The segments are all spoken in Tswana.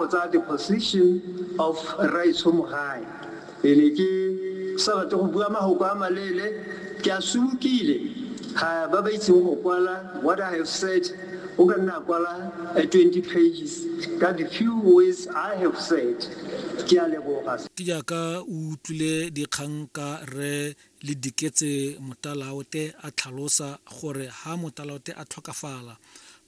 Go tsaya the position of Rraetsho Mogae. Ke ne ke sa batle go bua magoko a maleele, ke a sumukile. Ga ba ba itseng go kwala, what I have said, o ka nna a kwala 20 pages ka the few words I have said. Ke a leboga. Ke jaaka o utlwile dikgang ka Rre Lediketse Motalaote a tlhalosa gore ha Motalaote a tlhokafala,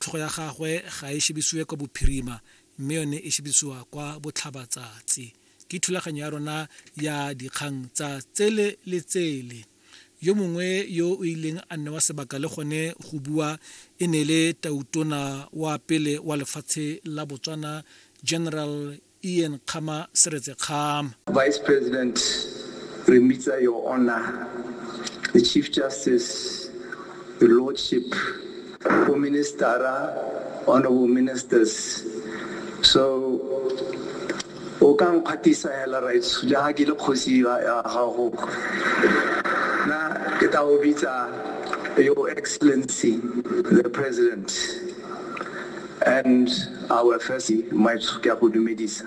tlhogo ya gagwe ga e shebisiwe kwa bophirima, mme yone e shebisiwa kwa botlhabatsatsi ke thulaganyo ya rona ya dikgang tsa tsele le tsele yo mongwe yo o ileng a nne wa sebaka le gone go bua e ne le tautona wa pele wa lefatshe la botswana general ian kgama seretse kgama vice president re mmitsa your honor the chief justice Your Lordship, Bo Ministara, Honorable Ministers. So, o ka nkgatisa hela right ja ke le kgosi ya gago na ke ta o bitsa your excellency the president and our first my ke a go dumedisa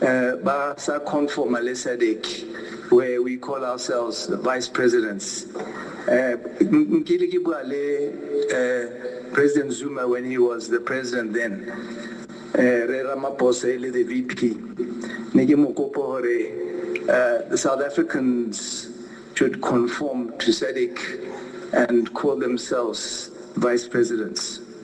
Ba sa conform-a le Sadc where we call ourselves the vice presidents. Nkile ke bua le President Zuma when he was the president then, Rre Ramaphosa e le the VP. Ne ke mo kopa hore the South Africans should conform to Sadc and call themselves vice presidents.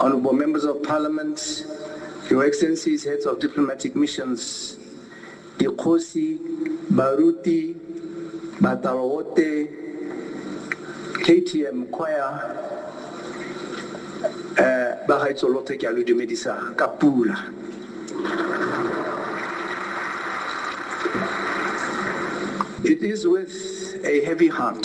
Honorable members of parliament, your excellencies, heads of diplomatic missions, dikgosi, baruti, batabaote, KTM choir, eh, ba gaetso lotlhe ke a lo dumedisa ka pula. It is with a heavy heart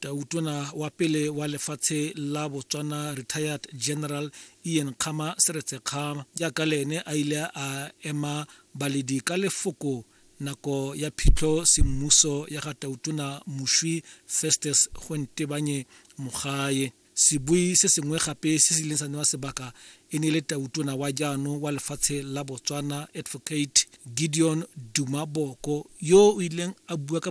Tautona wa pele wa lefatshe la Botswana Retired General Ian Kgama Seretse Kgama jaaka le ene a ile a ema baledi ka lefoko nako ya phitlho semmuso ya ga Tautona Moshwi Festus Gontebanye Mogae. Sebui se sengwe gape se se ileng sa newa sebaka e ne e le Tautona wa jaanong wa lefatshe la Botswana Advocate Gideon Duma Boko yo o ileng a bua ka